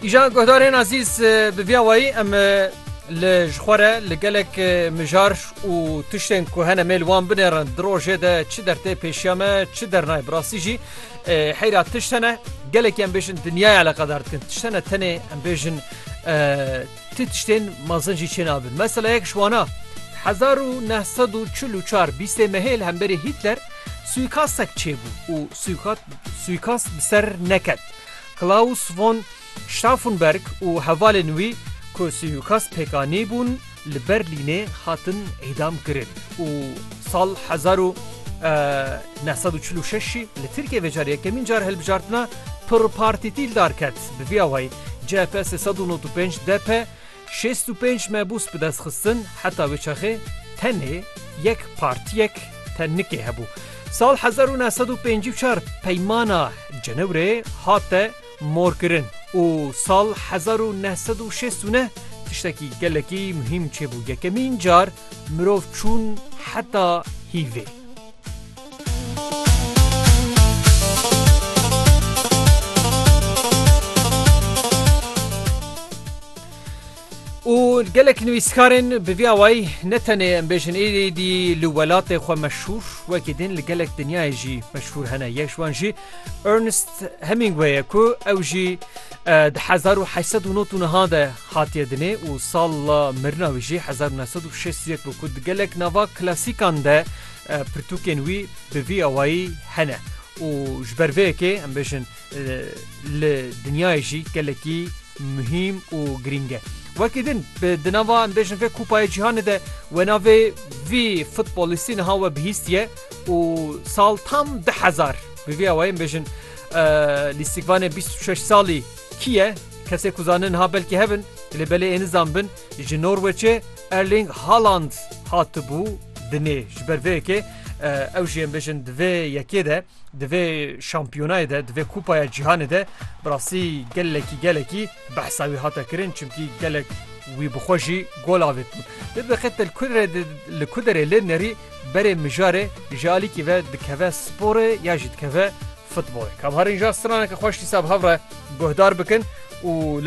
Îjan guhdarên ezîz bi vîya wayî em li ji xwe re li gelek mijar û tiştên ku hene mêl wan binêrin di rojê de çi dertê pêşiya me çi dernayê bi rastî jî heyra tişt hene gelekî em bêjin dinyaya eleqedar dikin tişt hene tenê em bêjin Ti tiştên mezin jî çênabin. Mesela yek ji wana, hezar û neh sed û çil û çar bîstê mehê li hemberî Hîtler suîkastek çêbû û suîkast bi ser neket. Klaus von Stauffenberg û hevalên wî ku suîkast pêk anîbûn li Berlînê hatin îdam kirin û sal hezar û neh sed û çil û şeş jî li Tirkiyê vê carî yekemîn car hilbijartina pirpartîtî li dar ket. Bi vî awayî CHP sê sed û nod û pênc, DP şêst û pênc mebûs bi dest xistin, heta wê çaxê tenê yek partiyek te nikê hebû. Sal hezar û neh sed û pêncî û çar Peymana Cenewrê hate morkirin û sal hezar û neh sed û şêst û neh tiştekî gelekî muhîm çêbû yekemîn car mirov çûn heta hîvê. û gelek nivîskarên bi vî awayî ne tenê em bêjin êdî dî li welatê xwe meşhûr wekî din li gelek dinyayê jî meşhûr hene yek ji wan jî Ernest Hemingway ye ku ew jî di hezar û heyset û not û niha de hatiye dinê û sala mirina wî jî hezar û newsed û şêst yek bû ku di gelek nava klasîkan de pirtûkên wî bi vî awayî hene û ji ber vê yekê em bêjin li dinyayê jî gelekî muhîm û girîng e. Wekî din bi di nava em bêjin vê kupayê cîhanê de we navê vî futbolîstî niha we bihîstiye û sal tam di hezar bi vî awayî em bêjin lîstikvanê bîst û şeş salî kî ye kesê ku zanin niha belkî hev in lê belê ê nizan bin ji Norweçê Erling Haaland hatibû dinê ji ber vê yekê ew jî em bêjin di vê yekê de di vê şampiyonayê de di vê kupaya cîhanê de bi rastî gelekî gelekî behsa wî hate kirin çimkî gelek wî bixwe jî gol avêtin di biqet li kuderê lê nerî berê mijarê ji alîkî ve dikeve sporê ya jî dikeve futbolê kamharîn ja straneke xweş dîsa bi hev re guhdar bikin û